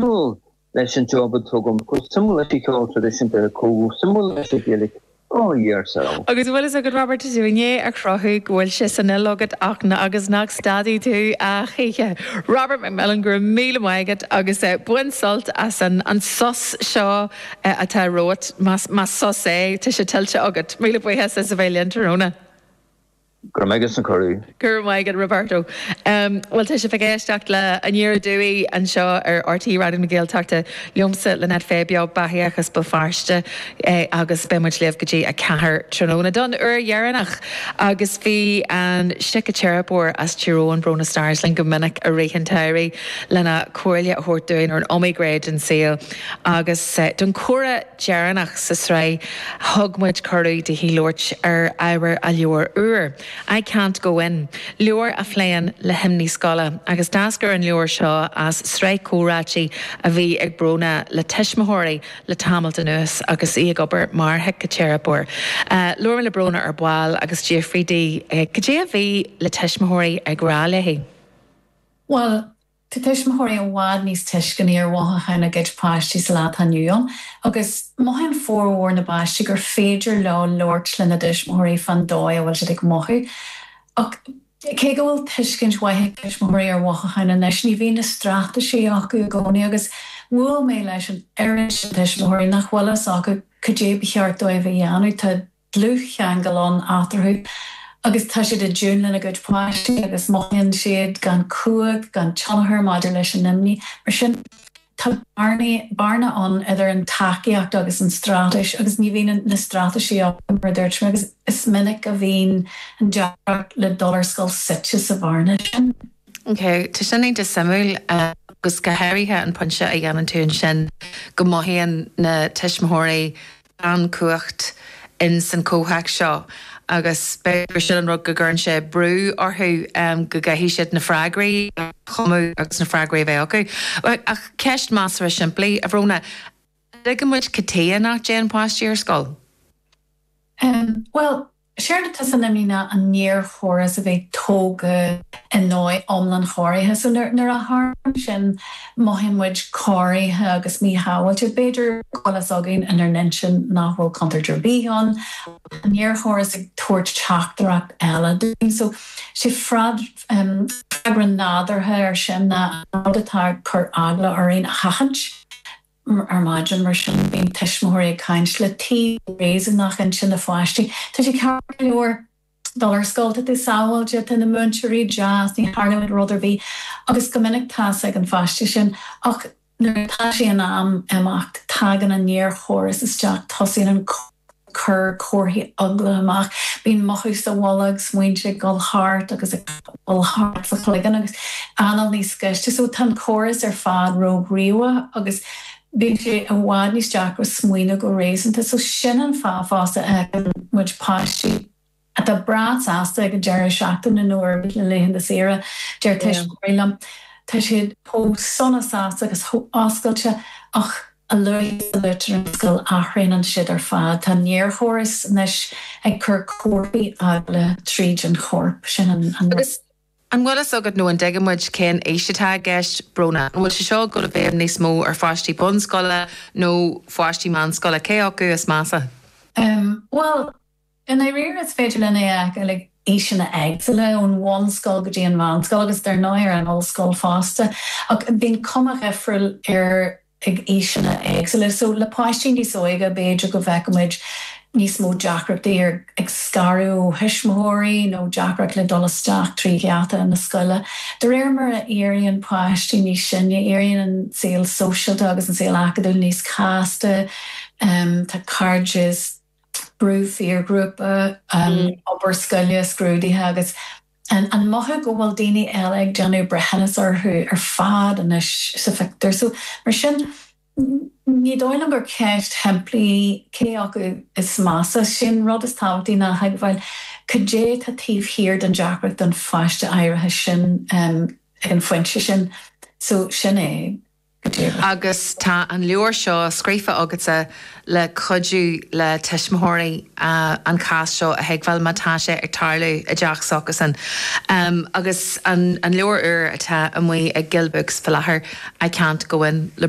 suimiúil leis an job atá agam, chomh suimiúil leis an cheol traidisiúnta, chomh suimiúil leis an Ghaeilge, ar ndóigh so. Agus a bhfuil fhios agat, Robert, is í an aois a chruthú go bhfuil sé san fhuil agat achan áit agus nach stadfaidh tú a choíche. Robert McMillen, go raibh míle maith agat agus bain sult as an an sos seo atá romhat, más más sos é, tá sé tuillte agat. Míle buíochas as a bheith linn tráthnóna. Go raibh maith agat as an cuireadh. Go raibh maith agat, Roberto. Bhuel, tá sibh ag éisteacht le Aniar Aduaidh anseo ar RTÉ Raidió na Gaeltachta, liomsa, Lynette Fay, beo beathaíoch as Béal Feirste, agus beidh muid libh go dtí a ceathair tráthnóna don uair dheireanach. Agus bhí an síciteiripeoir as Tír Eoghain, Bróna Starrs, linn go minic i rith an tsamhraidh lena comhairle a thabhairt dúinn ar an iomaí gné den saol agus den chroí. dheireanach sa tsraith, thug muid cuireadh daoithi labhairt ar ábhar a leabhair úir, I Can't Go In, leabhar a phléann le himní scoile, agus d'eascair an leabhar seo as sraith comhráití a bhí ag Bróna le tuismitheoirí le tamalt anuas agus í ag obair mar shíciteiripeoir. Labhair mé le Bróna ar ball agus d'fhiafraigh di cad é a bhí na tuismitheoirí ag rá léi. Bhuel, Tá tuismitheoirí i bhfad níos tuisceanaí ar mhothucháin a gcuid páistí sa lá atá inniu ann agus mothaíonn formhór na bpáistí gur féidir leo labhairt lena dtuismitheoirí fán dóigh a bhfuil siad ag mothú. Ach, cé go bhfuil tuiscint mhaith ag tuismitheoirí ar mhothucháin anois, ní bhíonn na straitéisí acu i gcónaí agus bhuail mé leis an oiread sin tuismitheoirí nach bhfuil fhios acu cad é ba cheart dóibh a dhéanamh. Tá. dlúthcheangal ann eatarthu agus tá siad i dtiúin lena gcuid páistí agus mothaíonn siad gan cumhacht, gan tionchar maidir leis an imní. Mar sin, tá bearna ann idir an tacaíocht agus an straitéis agus ní bhíonn na straitéisí acu, mar a dúirt mé, agus is minic a bhíonn an deacracht le dul ar scoil suite sa bhearna sin. Ok, tá sin iontach suimiúil agus go háirithe an pointe a dhéanann tú ansin go mothaíonn na tuismitheoirí gan cumhacht in san chomhthéacs seo agus b'fhéidir gur sin an rud go gcuireann sé brú orthu go gcaithfidh siad na freagraí a chumadh agus na freagraí a bheith acu. Ach ceist measartha simplí, a Bhróna, an dtuigeann muid cad é an fáth nach dtéann páistí ar scoil? Bhuel, Séard atá san imní ná an néarchóras a bheith tógtha i ndóigh iomlán corraithe. So nuair a tharlaíonn sin mothaíonn muid corraithe agus míshábháilte. B'fhéidir go bhfuil fhios againn inár n-intinn nach bhfuil contúirt ar bith ann ach tá an néarchóras ag tabhairt teachtaireacht eile dúinn. So sé an freagra nádúrtha ar sin ná an rud atá ag cur eagla orainn a sheachaint. ar maidin, mar sin, bíonn tuismitheoirí ag caint le taobh réasúnach intinne an pháiste. Tá sé ceart go leor dul ar scoil, tá tú sábháilte, tá na múinteoirí deas, ní tharlóidh rud ar bith, agus go minic tá's ag an pháiste sin, ach nuair atá sé in am imeacht, tagann an néarchóras isteach, tosaíonn an. cuir comharthaí eagla amach. Bíonn mothú sa bholg, smaointe ag dul thart agus ag dul thart sa chloigeann agus anáil níos gaiste. So tá an córas ar fad róghníomhach agus bíonn sé i bhfad níos deacra smaoineamh go réasúnta. So sin an fáth fosta a fheiceann muid páistí. atá breá sásta ag an deireadh seachtaine nó ar na laethanta saoire, deir tuistí liom. Tá siad chomh sona sásta agus chomh oscailte ach a luaithe is a luaitear an scoil athraonann siad ar fad. Tá an néarchóras anois ag cur comharthaí eagla tríd an chorp. Sin an rud. An bhfuil fhios agat nó an dtuigeann muid cén aois atá i gceist, Brónagh? An bhfuil sé seo ag dul i bhfeidhm níos mó ar pháistí bunscoile nó pháistí meánscoile? Cé acu is measa? Bhuel, I ndáiríre, is féidir leis teacht ag aoiseanna éagsúla, ón bhunscoil go dtí an mheánscoil agus dar ndóigh ar an ollscoil fosta, ach bíonn cuma dhifriúil air ag aoiseanna éagsúla. So, le páistí níos óige, b'fhéidir go bhfeicfimid níos mó deacrachtaí ag scaradh ó thuismitheoirí nó deacracht le dul isteach trí gheata na scoile. De réir mar a éiríonn páistí níos sine, éiríonn an saol sóisialta agus an saol acadúil níos casta, tá cairdeas. brú piarghrúpa, obair scoile, scrúduithe agus an mothú go bhfuil daoine eile ag déanamh breithiúnas orthu ar fad anois sa phictiúr. So, mar sin, ní dóigh liom gur ceist shimplí í, cé acu is measa. Sé'n rud is tábhachtaí ná a thuigbheáil cad é atá taobh thiar den deacracht don pháiste áirithe sin ag an phointe sin. So, sin é. agus tá an leabhar seo scríofa agatsa le cuidiú le tuismitheoirí an cás seo a thuigbheáil má tá sé ag tarlú i dteach s'acusan. Agus an leabhar úr atá amuigh ag Gill Books faoi láthair, I Can't Go In, le.